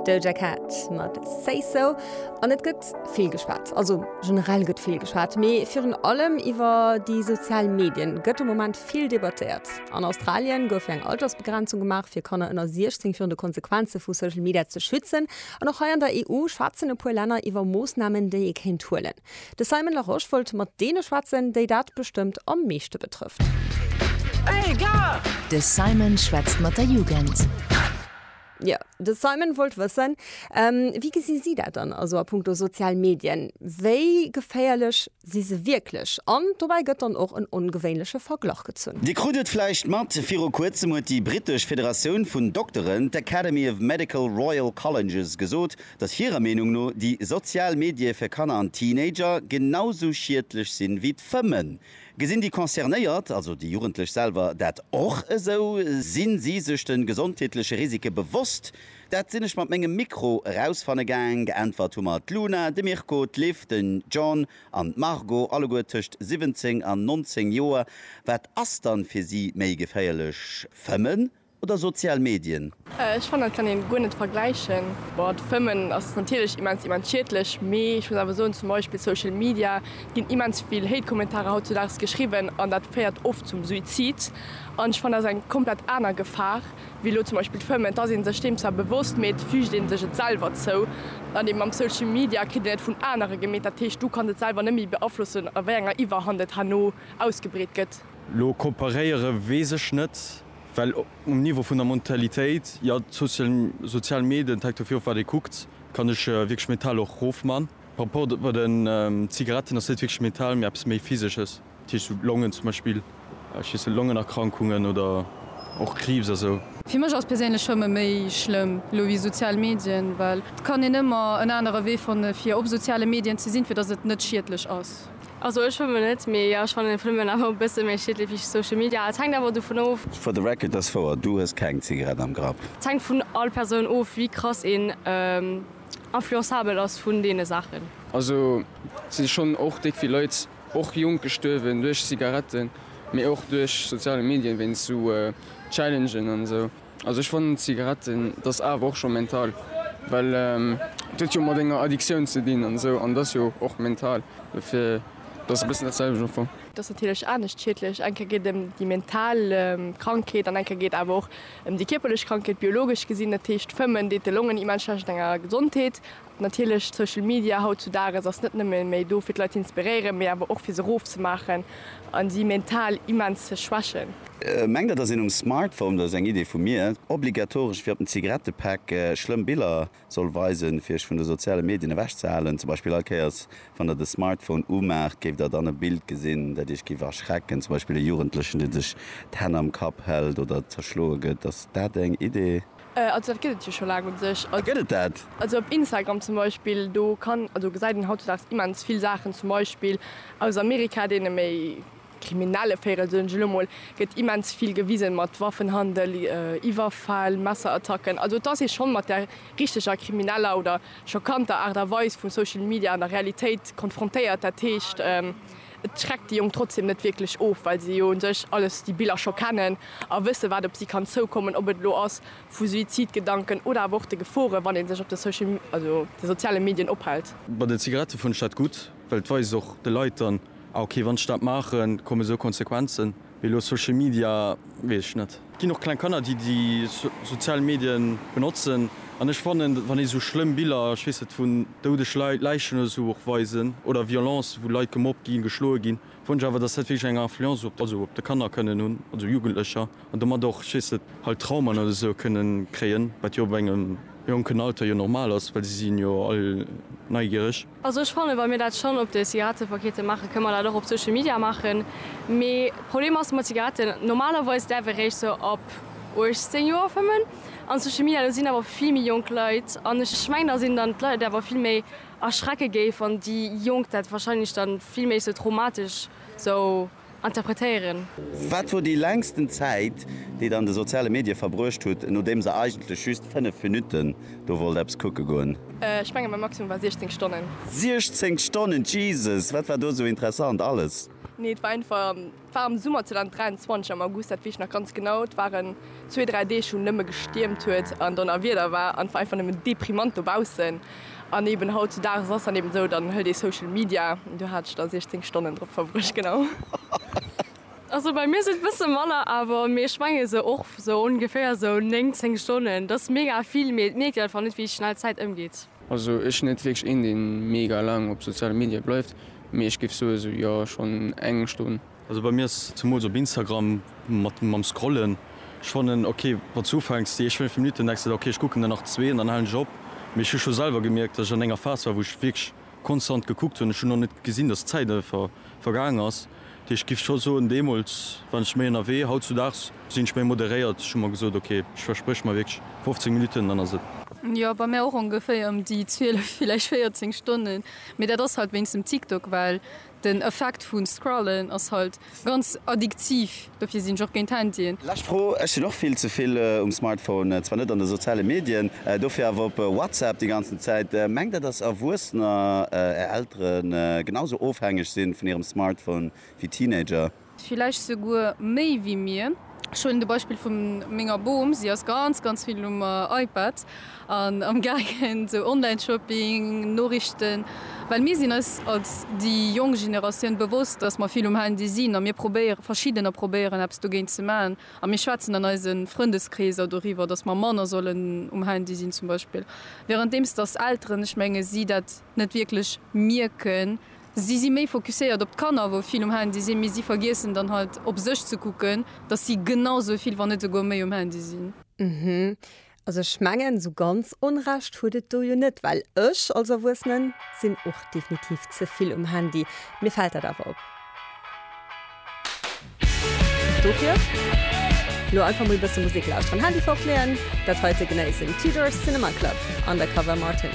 Doja Cat mat Say So an et gëtt vill geschwat. Also generell gëtt vill geschwat, mee virun allem iwwer déi sozial Medien gëtt de Moment vill debattéiert. An Australien gouf jo eng Altersbegrenzung gemaach fir Kanner ënner 16 virun de Konsequenze vu Social Media ze schützen. An och hei an der EU schwätzen e puer Länner iwwer Moossnamen déi ee kéint huelen. De Simon Larosche wollt mat deene schwätzen, déi dat bestëmmt am meeschte betrëfft. De Simon schwätzt mat der Jugend. Jo, de Simon wollt wëssen, Wéi gesi si dat dann also a punkto sozial Medien? Wéi geféierlech si se wierklech? An dobäi gëtt dann och en ongewéinleche Verglach gezunn. Dir krut et vläicht mat, viru kuerzem huet déi brittesch Federatioun vun Dokteren, d'Academy of Medical Royal Colleges, gesot, dass hirer Meenung no déi sozial Medie fir Kanner an Teenager genau sou schiedlech sinn ewéi d'Fëmmen. Gesinn déi Concernéiert, also déi Jugendlech selwer, dat och esou? Sinn si sech de gesondheetleche Risike bewosst? Dat sinn ech mat mengem Mikro erausfanne gaang. Geäntwert hu mer d'Luna, de Mirko, d'Liv, den John an d'Margot, alleguer tëscht 17 an 19 Joer. Wat ass dann fir si méi geféierlech, Fëmmen Oder sozial Medien? Ech fannen dat kann een guer net vergläichen. Boah d'Fëmmen ass natierlech immens immens schiedlech, mee ech muss awer soen zum Beispill Social Media ginn immens vill Hate Kommentarer hautzudaags geschriwwen an dat féiert oft zum Suizid an ech fannen dat ass eng komplett aner Gefahr wéi elo zum Beispill d'Fëmmen. Et ass een sech deem zwar bewosst, mee et füügt een sech et selwer zou an eben mam Social Media kritt een et vun anere gemeet, dat heescht du kanns et selwer net méi beaflossen a wéi enger Iwwerhand et herno ausgebreet gëtt. Lo kooperéiere weess ech net. Well um Niveau vun der Mentalitéit, jo, d'sozial Medien, et hänkt dofir of wat ee kuckt, kann ech wierklech Metall och rofman. Par rapport bei den Zigaretten ass net wierklech Metall, mee eppes méi physesches, dat heescht sou Longen zum Beispill, ech weess net, Longenerkrankungen oder och Kriibs a sou. Fir mech ass perséinlech Fëmme méi schlëmm elo wéi sozial Medien, well et kann een ëmmer en anere Wee fanne fir op soziale Medien ze sinn, fir datt et net schiedlech ass. Also ech schwëmmen net, mee jo ech fannen den Phenomen awer e bësse méi schiedlech wéi Social Media. Et hänkt awer dovun of. For the record, dass wouer, du hues keng Zigarett am Grapp. Et hänkt vun all Persoun of wéi krass een influençabel ass vun deene Saachen. Also et si schonn och déck vill Leit, och jonk, gestuerwen duerch Zigaretten, mee och duerch soziale Medien, wéinst sou Challengen an esou. Also ech fannen Zigaretten dass awer och scho mental, well et huet jo mat enger Addiktioun ze dinn an esou an et ass jo och mental, dofir et ass e bëssen dat selwecht am Fong. Et ass natierlech anescht schiedlech, eng Kéier geet et ëm déi mental Krankheet an eng Kéier geet et awer och ëm déi kierperlech Krankheet, biologesch gesinn. Dat heescht, Fëmmen deet de Longen immens schlecht an enger Gesondheet Natierlech, Social Media haut zu Dages ass net nëmme méi do fir d'Leit z'inspiréieren, mee awer och fir se roof ze maachen a si mental immens ze schwächen. Mengt der dass een um Smartphone, dat ass eng Idee vu mir, obligatoresch wéi op den Zigarettepäck schlëmm Biller soll weisen fir iech vun de soziale Medien ewech ze halen? Zum Beispill all Kéiers wann der de Smartphone umaacht géift der dann e Bild gesinn dat iech géif erschrecken, zum Beispill e Jugendlechen deen sech d'Hänn am Kapp hält oder zerschloe gëtt. Ass dat eng Idee? Also dat gëtt et jo scho laang un sech. Ah gëtt et dat? Also op Instagram zum Beispill, do kann, also gesäit een hautzedags immens vill Saachen, zum Beispill aus Amerika, deene méi kriminelle Véirel, soen ech elo mol, gëtt immens vill gewisen, mat Waffenhandel, Iwwerfäll, Messerattacken. Also et ass ee schonn mat der richteger krimineller oder schockanter Aart a Weis vu Social Media an der Realitéit konfrontéiert. Dat heescht. Et schreckt déi Jonk trotzdeem net wierklech of, well se jo u sech alles déi Biller scho kennen a wësse wat op si kann zoukommen, ob et elo ass vu Suizidgedanken oder awer och de Gefore wann ee sech op de Social, also de soziale Medien ophält. Bei den Zigarette fonnt ech dat gutt, well et weist och de Leit dann, ah okay, wann ech dat maachen, kommen esou Konsequenzen. Mee elo Social Media weess ech net. Et ginn och kleng Kanner déi déi sozial Medien benotzen an ech fannen wann ee sou schlëmm Biller, ech weess net, vun doudeg Leit, Läichen oder sou och weisen oder Violence wou Leit gemobbt ginn, geschloe ginn, fannen ech awer dass dat wierklech eng Influence op, also op de Kanner kënnen hunn, also Jugendlecher an domat och, ech weess net, halt Traumen oder sou kënnen kréien, wat jo op engem jonken Alter jo normal ass, well si sinn jo all neigiereg. Also ech fannen, wa mir dat schonn op de Zigarettepakete maachen, kënne mer dat och op Social Media maachen. Mee d'Problem ass mat Zigaretten, normalerweis däerf ee réischt sou ab 18 Joer fëmmen. An Social Media, do sinn awer vill méi jonk Leit. An ech mengen, datt een dann d'Leit awer vill méi erschrecke géif, wann déi Jonk dat wahrscheinlech dann vill méi sou traumatesch sou. interpretéieren. Wat wor déi längsten Zäit, déi der an de soziale Medie verbruecht hutt, nodeems der eigentlech just 5 Minutten do wollt eppes kucke goen? Ech mengen mäi Maximum war 16 Stonnen. 16 Stonnen, Jesus! Wat war do esou interessant alles? Nee, et war einfach, et war am Summer 2023 am August, dat weess ech nach ganz genau. Et waren zwee, dräi Deeg wou nëmme gestiermt huet an Donnerwieder war an et war einfach nëmmen deprimant dobaussen. An eben hautzudages ass dann eben esou, dann hëlt ee Social Media, do hat ech da 16 Stonnen drop verbruecht, genau. Also bei mir sinn et bësse manner awer, mee ech menge sou och sou ongeféier esou 9, 10 Stonnen, dat ass mega vill, mee et mierkt een einfach net, wéi schnell d'Zäit ëmgeet. Also ech sinn net wierklech een, dee mega laang op soziale Medie bleift, mee ech géif soe sou, jo, schonn eng Stonn. Also bei mir ass zumools op Instagram mat mam scrollen, ech fannen ok wanns du ufänks déi éischt 5 Minuten denks de der ok ech kucken der nach zwee an dann halen ech op, mee ech hu scho selwer gemierkt dass ech an enger Phase war wou ech wierklech konstant gekuckt hunn, ech hunn och net gesinn dass d'Zäit einfach vergaangen ass, dat heescht ech giff scho soen deemols waren ech méi ënnerwee, hautzudags sinn ech méi moderéiert, ech hu mer gesot ok ech verspréch mer wierklech 15 Minuten dann ass et. Jo bei mir och ongeféier ëm déi 12 villäicht 14 Stonnen, mee dat ass halt wéinst dem TikTok well. Den Effekt vun Scrollen ass halt ganz addiktiv, dofir sinn ech och géint Handyen. Lescht Fro, Ech sinn och vill ze vill um Smartphone, zwar net an de soziale Medien, dofir awer op WhatsApp déi ganzen Zäit. Mengt der dass Erwuessener, är Elteren, genau sou ofhängeg sinn vun hirem Smartphone wéi Teenager? Villäicht souguer méi wéi mir. Ech huelen de Beispill vu menger Bom. Si ass ganz, ganz vill um iPad an amgaangen, esou Online-Shopping, Noriichten. Well mir sinn eis als déi jonk Generatioun bewosst, dass mer vill um Handy sinn a mir probéieren, verschiddener probéieren eppes dogéint ze maachen. A mir schwätzen an eise Frëndeskreeser doriwwer, dass mer manner sollen um Handy sinn zum Beispill. Währenddeems dass Elteren, ech menge si dat net wierklech mierken. Si si méi fokusséiert op d'Kanner, wou vill um Handy sinn, mee si vergiessen dann halt op sech ze kucken, dass si genau sou vill, wann net souguer méi um Handy sinn. Hm, also ech mengen, sou ganz Onrecht hutt et do jo net, well ech als Erwuessene sinn och definitiv ze vill um Handy. Mir fält dat awer op. Dofir elo einfach mol e bësse Musek lauschteren, Handy fortleeën, dat heite genéissen, Tudors Cinema Club, Undercover Martin.